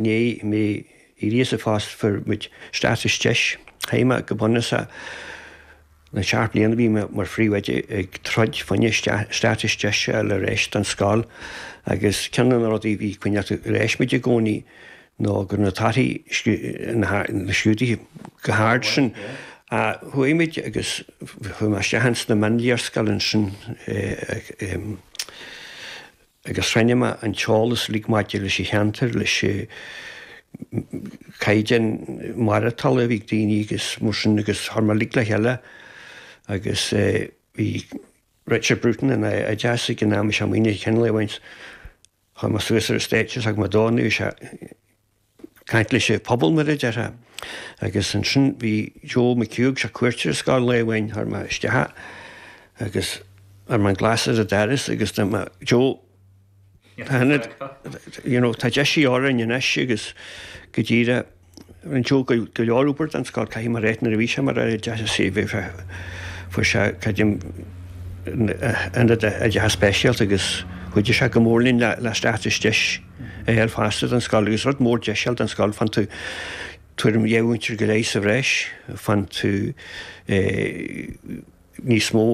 rinne mé éirí as fosta fuair muid status deis chaith mé go bunúsach na seacht mbliana bhí mé mar phríomhoide ag troid fá choinne status deis a fháil ar ais don scoil agus ceann de na rudaí a bhí ag coinneáil ar ais muid i gcónaí ná go raibh na torthaí na scrúduithe go hard sin a chuaigh muid agus chuaigh mé isteach ins na mionléarscáileanna sin i agus chruinnigh mé an t-eolas uilig maidir leis an cheantar, leis caighdeán maireatála a bhí ag daoine agus mar sin agus chuir mé uilig le chéile agus bhí Richard Bruton ina Aire Oideachais ag an am is ea muidne ag ceangal a bhaint chuaigh mé suas ar an stáitse is thug mé dó, nuair a bhí sé ag, caint leis an phobal, mar a déarfá. Agus ansin bhí Joe McHugh, sé ar cuairt ar an scoil lá amháin thug mé isteach agus chuir mé an glas ar an doras agus dúirt mé Joe tá ionad you know tá deis de dhíth orainn anois agus go díreach rinne Joe go go leor obair don scoil caithfidh mé a ráit nuair a bhí sé mar Aire Oideachais bhí sé fuair sé caidim ionad oideachais speisialta agus chuidir sé go mór linn le le status deis a fháil fosta don scoil, agus rud mór deis a fháil don scoil, faigheann tú tuairim dhá mhúinteoir go leith sa bhreis, faigheann tú níos mó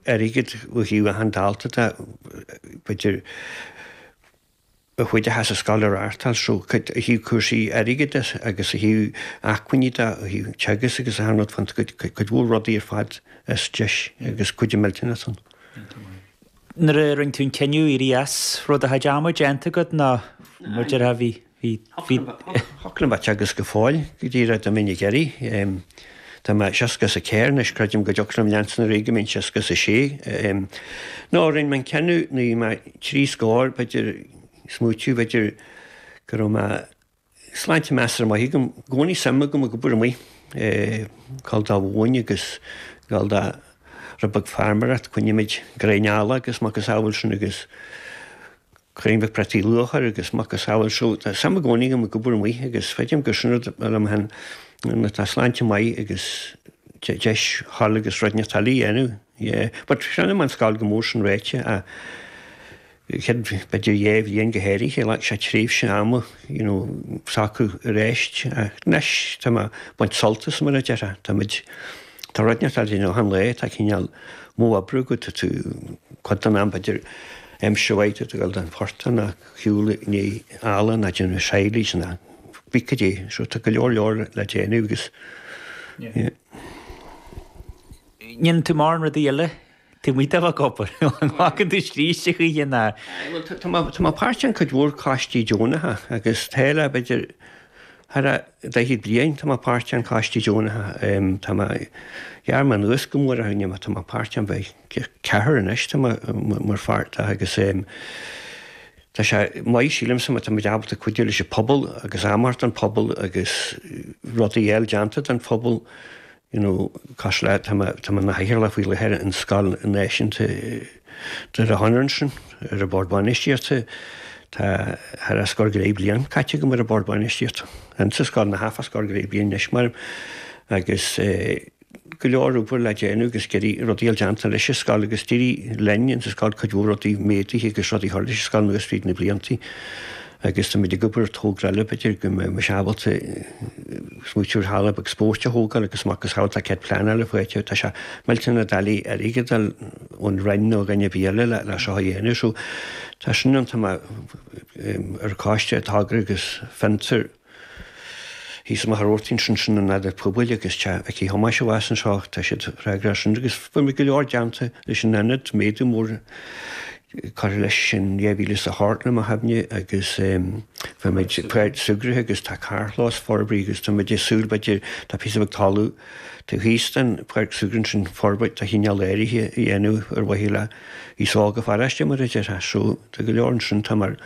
airgid ó thaobh achan dalta de, b'fhéidir a chuideochas an scoil a reáchtáil, so cuidiú ó thaobh cúrsaí airgid de agus ó thaobh acmhainní de, ó thaobh teagasc agus achan rud, faigheann tú cuid mhór rudaí ar fad as deis agus cuidiú millteanach ann. nuair a rinne tú an cinneadh éirí as, raibh do chuid ama déanta agat ná mar déarfá, bhí, bhí, bhí. Thiocfadh liom a bheith ag teagasc go fóill go díreach dá mbeinn ag iarraidh. Tá mé seasca 's a ceathair anois, creidim go dtiocfadh liom leanstan ar aghaidh go mbeinn seasca 's a sé. Nó rinne mé an cinneadh nuair bhí mé trí scór, b'fhéidir, smaoitiú, b'fhéidir go raibh mé, Sláinte measartha maith agam. I gcónaí suim agam ag obair amuigh, gabháil don mhóin agus gabháil do rud beag feirmeoireacht. Coinnímid gráinnín eallaigh agus macasamhail sin agus cuireann muid prátaí luatha agus macasamhail. So tá suim i gcónaí agam ag obair amuigh agus feicim gur sin rud le déanamh nuair atá sláinte maith agus deis dul agus rud inteacht eile a dhéanamh. Yeah, but cronaím an scoil go mór sin ráite. chéad b'fhéidir dhá bhliain go háirithe, ghlac sé tréimhse ama you know socrú aríst ach anois tá mé baint sult as mar a déarfá, táimid, tá rud inteacht le déanamh achan lá, tá cineál modh oibre agat, tá tú cuid den am b'fhéidir aimsir mhaith tú ag dul don phortach ná ag siúl i ndiaidh eallaigh ná déanamh silage ná cibé cad é so tá go leor leor le déanamh agus yeah. ndéanann tú mórán rudaí eile. Taobh amuigh de do chuid oibre, an bhfaca tú scíste choíche ná. Tá, tá mé páirteach in cuid mhór coistí deonacha agus tá le, b'fhéidir, tharas daichead bliain tá mé páirteach in coistí deonacha. Tá mé, ghearr mé anuas go mór, ní méid atá mé páirteach in b'fhéidir ceathair anois tá mé páirteach agus tá sé maith, sílimse, má tá muid ábalta cuidiú leis an phobal agus am a thabhairt don phobal agus rudaí a fháil déanta don phobal, you know, cosúil le, tá mé i mo chathaoirleach faoi láthair ar an scoil náisiúnta Dhoire Chonaire ansin ar an bord bainistíochta, tá tharas scór go leith bliain caite agam ar an bord bainistíochta insa scoil, tharas scór go leith bliain anois mar agus go leor obair le déanamh agus ag iarraidh rudaí a fháil déanta leis an scoil agus d'éirigh linn insa scoil cuid mhór rudaí a mhéadú agus rudaí a chur leis an scoil anuas fríd na bliantaí. Agus táimid ag obair ar thogra eile b'fhéidir go mbeidh muid ábalta smaoitiú ar halla beag spóirt a thógáil agus a mhacasamhail tá cead pleanála faighte. Tá sé muid ina dhiaidh ar airgead a fháil ón Roinn nó ó dhuine ar bith eile leis a dhéanamh so tá sin ann, tá mé ar an choiste togra agus fiontar. Thíos amach ar Mhachaire Rabhartaigh, sin sin an t-ionad pobail agus teach Thomáis abhus anseo, tá siad ag freagrach as sin agus fuair muid go leor déanta leis an Ionad, méadú mór curtha leis in 2000 sa seacht nó a hocht agus fuair muid páirc súgartha agus tá carrchlós forbraithe agus tá muid ag súil, b'fhéidir, tá píosa beag talamh taobh thíos den pháirc súgartha sin forbairt de chineál áirithe a dhéanamh ar mhaithe le aos óg na paróiste mar a déarfá, so tá go leor ansin, tá mar.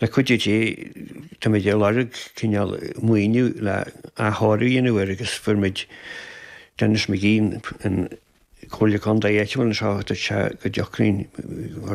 Le cuidiú Dé, táimid ag lorg cineál maoiniú le athchóiriú a dhéanamh air agus fuair muid Denis McGee, an comhairleoir contae áitiúil anseo, dúirt sé go dtiocfainn